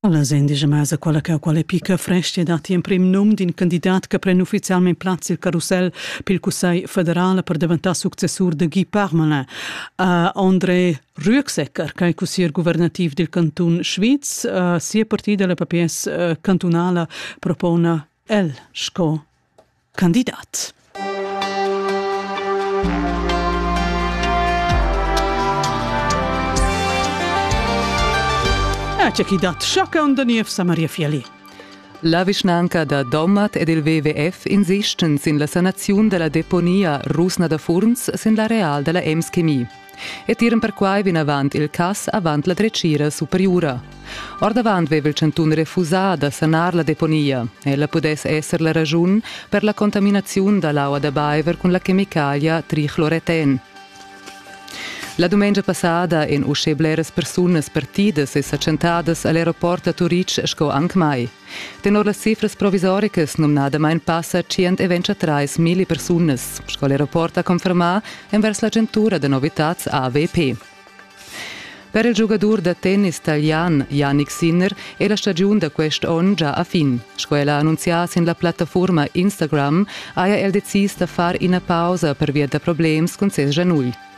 Allas endisch e mesa quella cheu quella picca frestga datti emprim num d'in candidat che pren ufficialmein plaz sil carusel pil Cussegl federal per daventar successur de Guy Parmelin. Uh, André Rüegsecker, che è cussier guvernativ del cantun Schwyz, uh, sia partida, la PPS uh, cantunala, propona el sco candidat. C'è chi dat sciacca un da niev sa Maria Fiali. La vischnanca da Domat ed il WWF insistan sin la sanaziun della deponia Rusna da Furns sin l'areal della Ems Chemie. e tiran perquai vinavant il cass avant la dretgira superiura. Ordavant veva il chantun refusà da sanar la deponia. Ella pudess esser la raschun per la contaminaziun da l'aua da baiver cun la chemicalia trichloreten. La dumengia passada èn uschè bleras persunas partidas e sa tschentadas a l'aeroport da Turitg sco anc mai. Tenor las cifras provisoricas numnadamain passa 123 milli persunas, sco l'aeroport ha confermà envers l'agentura da novitads AVP. Per il giugadur da tennis talian Yannick Sinner è la stagiun da quest onn già a fin. Sco el ha annunzià sin la plattafurma Instagram, haja el decis da far ina pausa pervia da problems cun ses gianugl.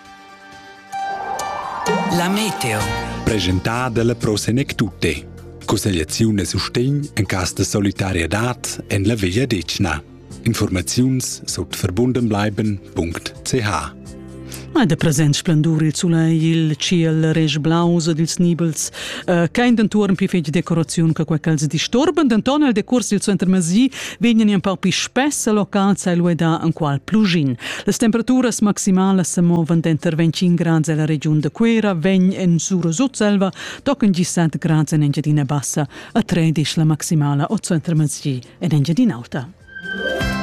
La meteo. Presentà dalla Pro Senectute. Cussegliaziun e sustegn en cas de solidarietad en la Veglia Decna. Informaziuns sut verbundenbleiben.ch Ma de present splendur il sulei il ciel resch blaus ed ils nibels uh, kein den tuorn pli fetg decoraziun che quei ch'els disturban denton el decurs dil suenter mesi vegnan in pau pli spess e locals ha el uedà enqual plugin. Las temperaturas maximalas sa movan denter 25 grads ella regiun da Cuera, vegn en Sura Sutselva, tochen gi 7 grads en Engiadina Bassa e 13 la maximala o center Masgi en Engiadin'Auta.